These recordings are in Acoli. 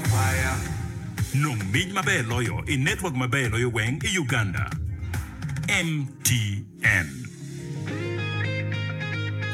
Kwaya, Nong mic maber loyo i network maber loyo weng i Uganda, MTN.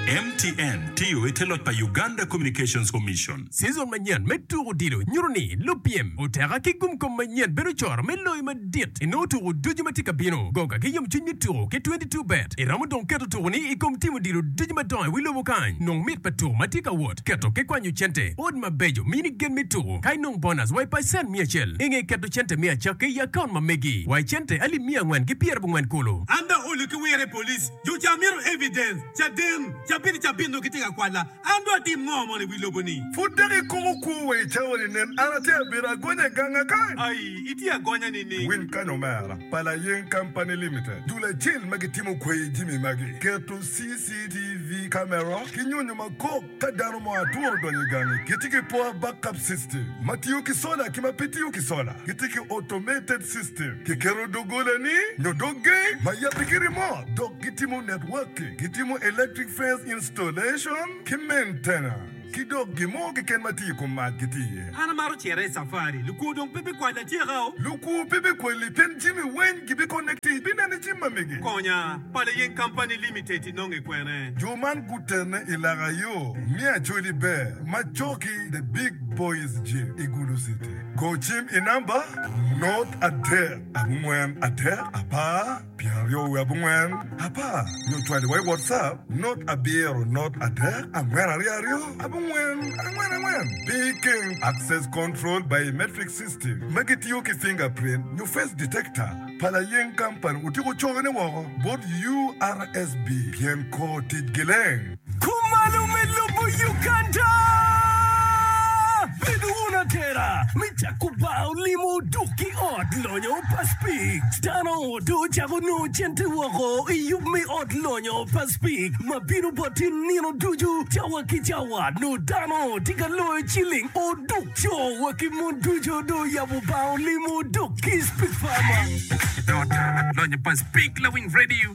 MTN tiyo i te loc pa Uganda Communications Commission. Season manyen me tuko odilo nyuto ni lupyem oteka ki gumkom manyen bedo coro me loyo madit. dit i nongo tuku ducu ma tye ka bino. Goga ki yomcwiny me tuku ki 22 bet. I romo dong keto tukuni i kom timo dilo ducu madongo i wi lobo kany. Nong mit pa tuku ma tye ka wot, keto ki kwanyo cente, ot mabeco, mini gen me tuku, ka inong bonus wa i pacent mia acel. I nge keto cente me acakki i akaunt ma megi wa i cente alip mia angwen ki pyera bongwen kulu. An dong olu ki wire police, jo ca mito evidence, caden, cabit i cabit nongo gitye ka kwala. An dong atim ngo mono i wi lobo-ni? Pud dok ikumo kwo wa i cawa-ni? Nen, an atye abedo agonya i ganga kany. Ai, itye agonya nining? Winy kany omera, pa Layeng Company Limited, dul acel ma gitimo kweyo jimi magi, keto CCTV camera ki nyonyo ma kok ka dano mo aturo donyo i gangi. Gitye ki power backup system ma tiyo ki sola ki ma pe tiyo ki sola. Gitye ki automated system, kiketo dogolani nyo dog geng ma yabbe ki remote, dok gitimo networking, gitimo electric fence installation, Installation ki maintenance ki dok gin mo keken ma tye i kom mac gitye iye. An amaro cito i safari. Lukwo dong pe bikwali atyeka o. Lukwo pe bikwali pien jami weng gibikonne ki bineno i cim ma mege. Konya, Pala Yeng Company Limited inonge kwene? Jo man gutene i laka yo me Acholi Ber ma coki The Big Boys Gym i Gulu City. Go cim i namba nort adek abongwen adek apar. pyeraryo wiye abongwen apar nyo cwaliwa i WhatsApp not abiro not adek angwen aryo aryo abongwen angwen angwen pi ikeng Access Control Biometric System ma gitiyo ki fingerprint nyo face detector pa Layeng Company otyeko cone woko bot URSB pien kor ticgi leng. Kumalo me lobo Uganda. Bedo wun atera me cako bar olimo dok ki ot lonyo pa Spik. Dano odo cako nongo cente woko i yub me ot lonyo pa Spik ma bino boti nino ducu cawa ki cawa. Nongo dano tye ka loyo ciling oduk. Co wa ki mon ducu do oyabo bar olimo dok ki Spik pa ma. Ot lonyo pa Spik lawiny radio.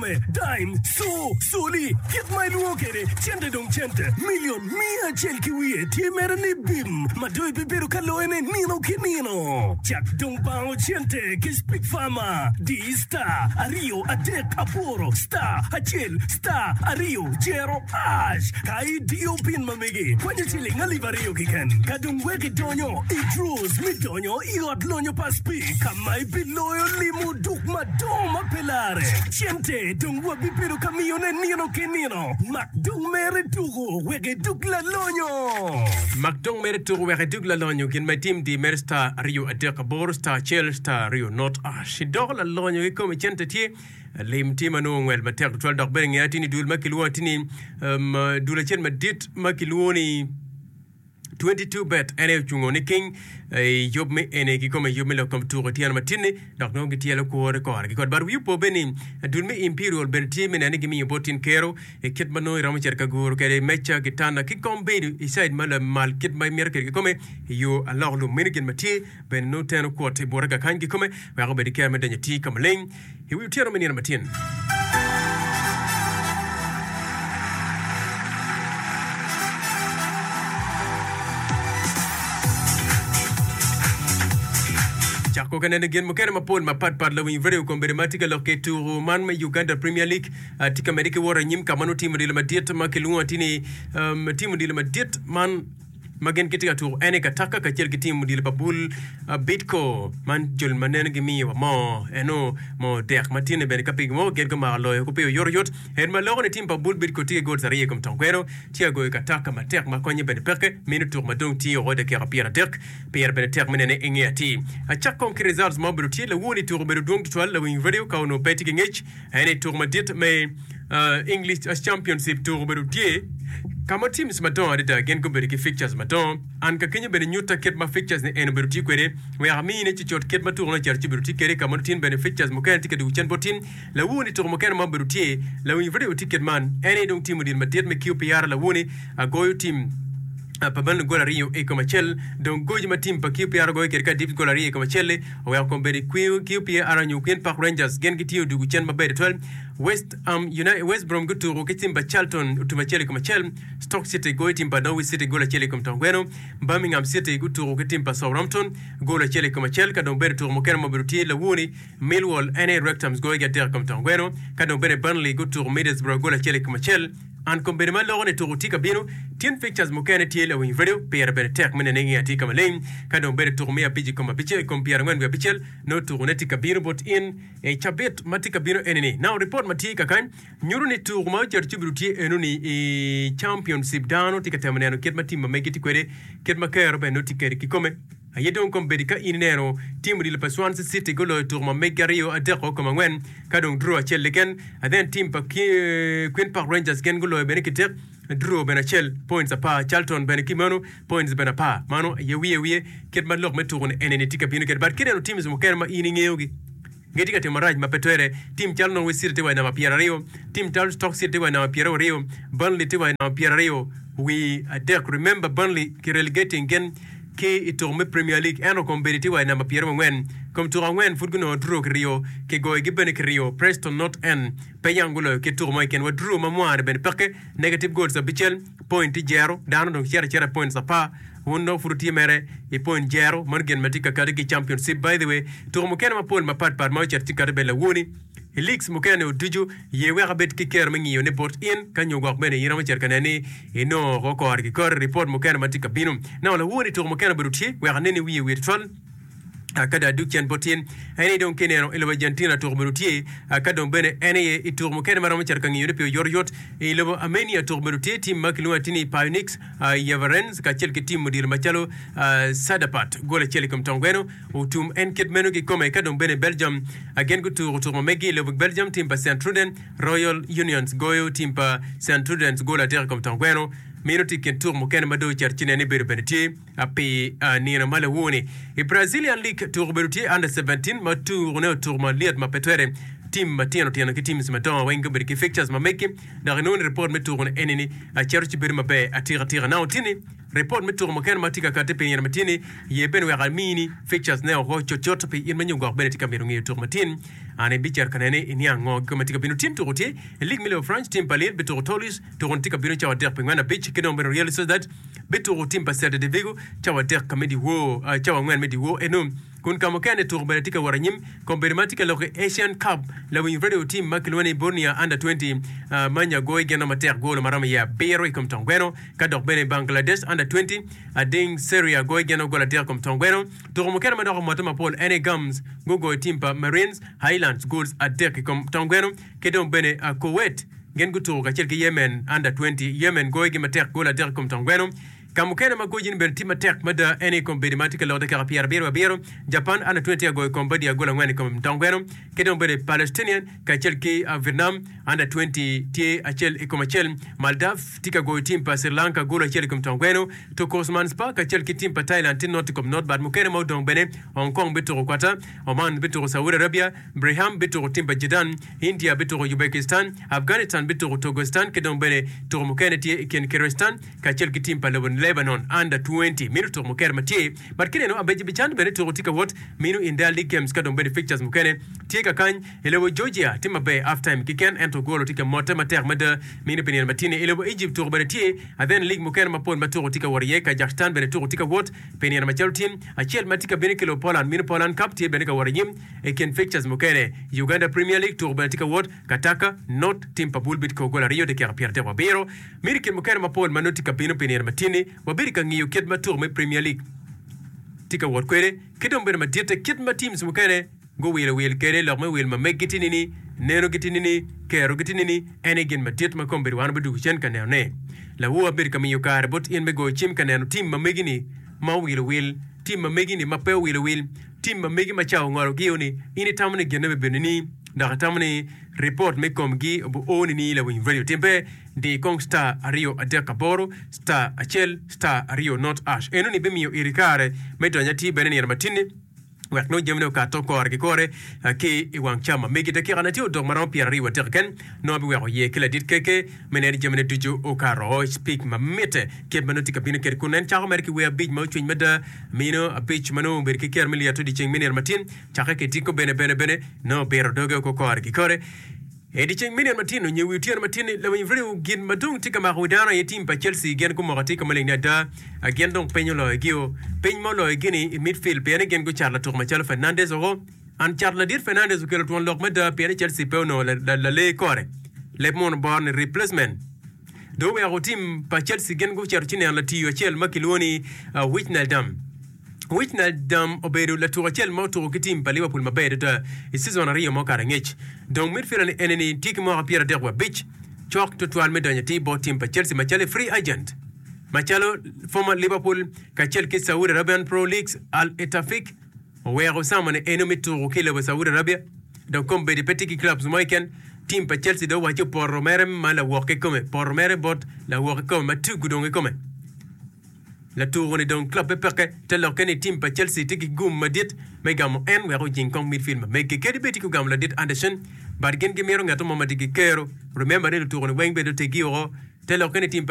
kome, dime, co, coli, kit ma ilwongo kwede cente dong cente, milion miya acel ki wiye tye mere ni bim ma dong ibibedo ka loyone nino ki nino. Cak dong bango cente ki Speak Farmer, di star aryo adek aboro star acel star aryo cero hash. Ka idiyo pin ma megi, kwanyo ciling alip aryo kiken, ka dong wek idonyo i draws me donyo i ot lonyo pa Speak. ma ebiloyo limo duk madongo ma pe lare. Cente dong wabibedo ka miyone nino ki nino. Mak dong mere tuku wek idug lalonyo. Mak dong mere tuku wek idug lalonyo gin ma itim di mere star aryo adek aboro star acel star aryo not ash idoko lalonyo kikomi cente tye lim tye ma nongo ngwel matek tutwal dok bene nge atinni dul ma kilwongo atinni um, dul acel madit ma kilwongo ni 22 bet en aye ocungo niking i yub me eni kikome yub me lok kom tuko tyen matini dok nongo gityelo kwore kore kikot bar wiu po bene ni dul me imperial bene tye me neno ni gimiyo bot tin kero i kit manongo iromo cito ka guru kede meca gitanda ki kom bedo i side ma lamal kit ma imito kede kikome i yo alok lum meno gin matye bene nongo teno kwot i bute kakany kikome weko bed ki kero me donyo atir kamaleng I wi otyeno me nino matin. Cak koka neno gin mukene mapol mapatpat. Lawiny redio kombedde ma tye ka lok ki tuku man me Uganda Premier League ah, tye ka medde ki wot anyim ka ma nongo timo dilo madit ma kilwongo ati ni um, timo dilo madit man ma gin gitye ka tuko ene ka taka kacel ki tim odilo pa bul Bidco man jol ma neno gimiyo wa moo eno moo dek ma tinne bene ka pigi mo gin gumako loyo ku piyo yot yot en ma loko ni tim pa bul Bidco tye ki gols ariyo ikom tong kweno tye ka goyo ka taka matek ma konye bene peke mino tuk ma dong tye oko dakika pyera dek pire bene tek me nene inge atir acak kong ki results ma obedo tye lawuo ni tuko obedo dwong tutwal lawiny radio ka onongo pe tye ki ngec En i tuko madit me English Championship tuko bedo tye ka ma teams madongo adada gin gubedo ki fixtures madongo. An ka kenyo bene nyutta kit ma fixtures ni en obedo tye kwede wek ami in icucut kit ma tuko ni ocito ci obedo tye kede ka mono tin bene fixtures mukene tye ka dwogo cen bot tin lawuni tuko mukene ma obedo tye lawiny radio tye kit man en aye dong tim odil madit me QPR lawuni agoyo tim pa Man gol aryo i kom acel dong goji ma tim pa QPR ogoyo kede ka adit gol aryo i kom acel-li oweko kom bedo i kwiyo ki opye aryo nyo okwin. Park Rangers gin gitye odwogo cen maber tutwal. West Ham United, West Brom gutuko ki tim pa Charlton otum acel i kom acel. Stoke City goyo tim pa Norwich City gol acel i kom tong gweno. Birmingham City gutuko ki tim pa Southampton gol acel i kom acel. Ka dong bene tuko mukene ma obedo tye lawoni, Millwall en aye Wrexham goyo gi adek i kom tong gweno. Ka dong bene Burnley gutuko Middlesbrough gol acel i kom acel. An kom bedo ma loko ni tuku tye ka bino, tin pictures mukene tye lawiny radio pire bene tek me nene nge atye ka maleng ka dong bedo tuku me abic i kom abica i kom pyera angwen wiye abicel nongo tuku ne tye ka bino bot in i cabit ma tye ka bino eni ni now report ma tye kakany nyuto ni tuku ma oceto cibido tye eno ni i championship dano tye ka temo neno kit ma tim ma megi tye kwede kit ma kero bene nongo tye kede kikome. Aye dong kom bedi ka in ineno tim odilo pa Swansea City guloyo tuko ma megi aryo adeko kom angwen ka dong draw acel keken. And then tim pa Queen Park Rangers gen guloyo bene ki tek draw bene acel points apar. Charlton bene ki meno points bene apar. Mano aye wiye wiye kit ma lok me tuko ni enini tye ka bino kede but kineno teams mukene ma in ingeyogi. Nge tye ka timo marac ma pe twere. Tim calo Norwich City tye wa i namba pyeraryo. Tim calo Stoke City tye wa i namba pyeraworyo. Burnley tye wa i namba pyeraryo wi adek. Remember Burnley ki relegating gen ki i tuko me Premier League ento kom bedi tye wa i namba pyerongwen. Kom tuko angwen pud gunongo draw ki ryo. Ki goyo gi bene ki ryo. Preston North End pe yam guloyo kit tuko mo keken wa draw ma mware bene peke negative goals abicel. point tye jero, dano dong cito acita i points apar, wun dong pud wutye mere i point jero, meno gin ma tye ka kati ki i championship. By the way, tuko mukene mapol mapat pat ma ocito tye kati bene lawoni i leagues mukene ni oducu, ye wek abed ki kero me ngiyo ne bot in ka nyo gwok bene in iromo cito ka nene ni inongo oko kore ki kore report mukene ma tye ka bino. Nano lawoni tuko mukene obedo otye wek aneni wiye wiye tutwal. ka dong adug can bot in. En aye dong ki ineno i lobo Argentina tuko medo tye, ka dong bene en aye i tuko mukene ma romo cito ka ngiyone pi oyotoyot. I lobo Armenia tuko medo tye tim ma kilwongo atir ni Pionix Yevarenz kacel ki tim odilo macalo Sadapat, gol acel i kom tong gweno, otum en kit meno kikome. Ka dong bene Belgium gin gutuko tuko ma meggi i lobo Belgium tim pa Sint-Truiden, Royal Unions goyo tim pa Sint-Truidens gol adek i kom tong gweno. Meno tye i kin tuko mukene ma dong ocito ci nen ni bedo bene tye. Pi nino ma luwoni, i Brazilian League tuko obedo tye Under 17 ma tukone otuko malyet ma pe twere. Tim matino tino ki teams madongo weng gubedo ki fixtures ma meggi, dok inongo ni report me tuko ni eni ni aceto ci bedo maber atika atika. Nano tye ni report me tuko mukene ma tye ka kati pi nino ma tye ni ye bene wek ami ni fixtures ne oko cut cut pi in ma nyo gwok bene itye ka mito ngeyo tuko matin an i bicito ka nene i niang ngo kiko ma tye ka bino. Tim tuko tye i league me League of France, tim pa Lille bituko Toulouse, tuko ni tye ka bino cawa adek pi ngwen abic ki dong bene Real Sociedad. bituko tim pa Celta de Vigo cawa adek ka me dyewor, ah, cawa angwen me dyewor eno. Kun ka mukene tuko bene tye ka wot anyim. Kombeddi man tye ka lok ki Asian Cup. Lawiny radio tim ma kilwongo ni Borneo Under 20, ah, ma nya goyo gin romo matek golo ma romo iye abiro i kom tong gweno, ka dok bene Bangladesh Under 20, ah, ding Seria goyo gin o gol adek i kom tong gweno. Tuko mukene ma dok omotte mapol en aye Gums gugoyo tim pa Marines, Highlands, gols adek i kom tong gweno. ki dong bene Kuwait gin gutuko kacel ki Yemen Under Twenty. Yemen goyogi matek goli adek i kom tong gweno. Ka mukene ma gocine bene tye matek mada en aye i kom bedo ma tye ka lok dakika pyerabiryo abiro. Japan Under Twenty tye ka goyo Cambodia goli angwen i kom tong gweno. Ki dong bene Palestinian kacel ki Vietnam Under Twenty tye acel i kom acel. Maldives tye ka goyo tim pa Sri Lanka goli acel i kom tong gweno. Turkosmanspa kacel ki tim pa Thailand tye not i kom not bat mukene ma odong bene. Hong Kong bituko Quatar. Oman bituko Saudi Arabia. Brigham bituko tim pa Jidan, India bituko Ubekistan, Afganistan bituko Togestan ki dong bene tuko mukene tye i kin Kiristan kacel ki tim pa Lebanon Under Twenty mino tuko mukene ma tye but ki neno Abejibijan bene tuko tye ka wot mino India League Games ka dong bene fixtures mukene tye ka kany I lobo Georgia tye maber half time kiken ento golo tye ka motte matek mada mino pi nino matine I lobo Egypt tuko bene tye and then league mukene mapol ma tuko tye ka wot iye Kazakhstan bene tuko tye ka wot pi nino macalo tim acel ma tye ka bino ki lobo Poland mino Poland Cup tye bene ka wot anyim I kin fixtures mukene, Uganda Premier League tuku bene tye ka wot, Kataka, Not, tim pa Bull Beat kor gol aryo dakika pyer adek wabiro. Mito i kin mukene mapol ma nongo tye ka bino pi nino matini, wabedo ka ngiyo kit ma tuku me Premier League tye ka wot kwede, ki dong bene maditte kit ma teams mukene guwilo wil kwede, lok me wil ma meggi tye nini, neno gi tye nini, kero gi tye nini, en aye gin madit ma kombedo wan wadugo cen ka neno ne. Lawu abedo ka miyo kare bot in me goyo cim ka neno team ma megi ni ma owilo wil, team ma megi ni ma pe owilo wil, Tim ma megi ma cawa ongolo giyo ni in itamo ni genne bibedo nini dok itamo ni report me kom gi obi oo nini lawiny radio tim pe di kong star aryo adek aboro star acel star aryo not ash eno ni bimiyo iri kare me donyo atir bene nino matinni wek nongo jamine okat to kore ki kore ki i wang cam ma megi dakika na tye odok maromo pyera aryo adek ken nongo biweko ye ki ladit keke me neni jamine ducu okato oo speak ma mitte kit ma nongo tye ka bino kede kun en cako mere ki wer abic ma ocwiny mada Mino apic ma nongo obedo ki ker me lyet odi ceng me nino matin, cakke ki tiko bene bene bene nongo biro doge oko kore ki kore. E dyeceng me nino matin onyo wi otyeno matin ni lawiny Vrew gin ma dong tye ka mako wi dano aye tim pa Chelsea gin gumoko atika maleng ni ada a gin dong piny oloyogio. Piny ma oloyogini i midfield pien ni gin gucato latuk macalo Fernandes oko. An cato ladit Fernandes okelo twon lok mada pien ni Chelsea pe onongo lalee kore, leb mono bor ni replacement. Dong oweko tim pa Chelsea gin gucito ci neno latiyo acel ma kilwongo ni Wijnaldum. Wijnaldum obedo latuk acel ma otuko ki tim pa Liverpool maber adada i cizon aryo ma okato angec. Dong midfielder-ni enini tye ki mwaka pyeradek wa abic, cok twatwal me donyo atir bot tim pa Chelsea macalo i free agent macalo former Liverpool kacel ki Saudi Arabian Pro Leagues Al Etafik. Oweko Osama ni en omito tuku ki lobo Saudi Arabia dok kombeddi pe tye ki clubs mo keken. Team pa Chelsea dong owaco poto mere ma lawok kikome poto mere bot lawok kikome ma tugo dong kikome. Latuku ni dong club pe peke te lokke ni team pa Chelsea tye ki gum madit me gamo en wek ojing kong midfield ma mege. Kadi bed tye ki ogamo ladit Anderson but gin gimito ngeto mo ma tye ki kero. Remember ni lutuku ni weng bene oteggi woko te lokke ni team pa